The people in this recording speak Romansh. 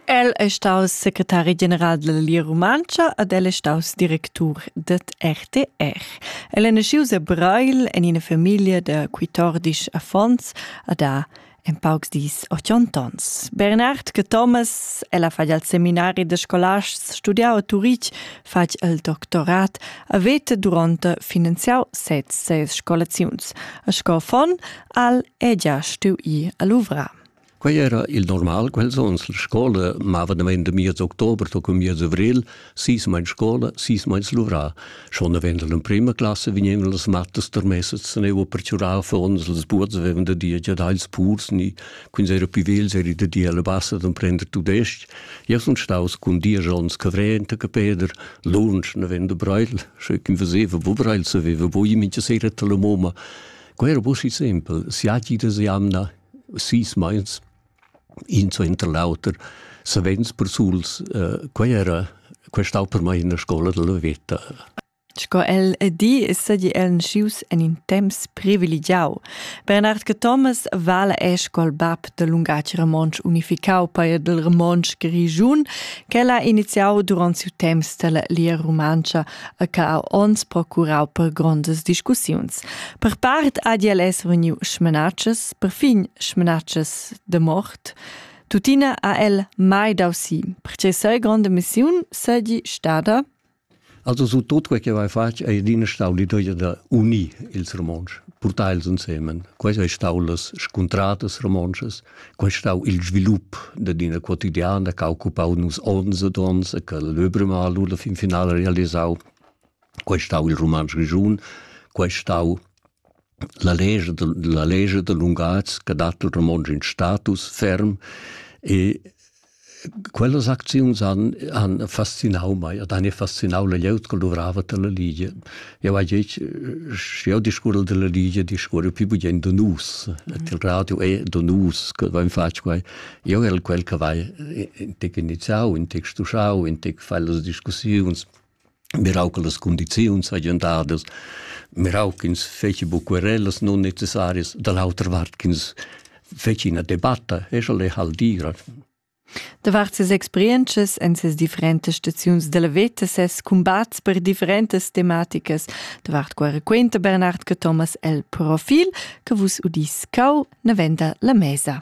El è staus secretari general della Lia Rumantscha ed el è staus directur ded RTR. El è naschius a Breil en ina famiglia da 14 affons ed ha en paucs dis 80 ans. Bernard che Thomas, ella fa il seminari de scolasts studiau a Turitg, fatg il doctorat a vete durante finanziau sez ses scolaziuns. A sco fon al è gia stui a Luvra. Quei era il normal, quels onns la scola mava damein da miez october to cun miez avril, sis meins scola, sis meins luvrà. Schon avend l'emprima classa vegnevan las mattas tarmessas se neu per giurar affons, las buots avevan da dir già dagls purs, ni quins era più vegls eri da dir alla bassa d'emprender tudestg. Io sun staus cun dies onns cavrent a Peder, lunsch avend da Breil, sche ch'in veseva wo Breil saveva, wo i mincha sera alla moma. Quei era busi simpel, siati da jamna, sis meins in suenter l'auter savens persuls uh, quei era quei stau per mai ina scola della veta Sco el di sedi el nascius en in temps privilegiau. Bernard che Thomas vala è scol bab del lungatg romonsch unificau per del romonsch grigiun, che l'ha iniziau durant siu temps della lia romancha e che ha onns procurau per grondas discussiuns. Per part ha el es vegniu smanatschas, perfin smanatschas de mort. Tuttina ha el mai dau si, perché sei grande missiun seigi stada Also su tot quel che vai fatg è adina stau l'idea da unir ils romontsch, portar els insieme. Questo è stato las scontradas romontschas Quei stau il svilup dad ina quotidiana che ha occupau nus onns ed onns e che Löbremal la fin finala realisau. Quei stau il Rumantsch Grischun, quei stau la legge, la legge da lungatgs che dat il romontsch in status ferm e Quellas acziuns han, han fascinau mei ed han fascinau la glieud che luvrava dalla Ligia. Jau hai detg, sch'jeu discurrel dalla Ligia, discurrel pli bugen da nus. Mm. Il radio è da nus che vain fatg quai. Jau el quel che vai intec iniziau, intec stuschau, intec fai las discussiuns. mirau che las condiziuns hagien dadas, mirau ch'ins feci bu querellas non necessarias, da l'autra vart ch'ins feci ina debatta, e sche lei hal dira. Davart ses experiences en ses differentas staziuns della veta, ses combats per differentas tematicas, davart qua raquenta Bernard che Thomas el profil, che vus udis cau, ne venda la mesa.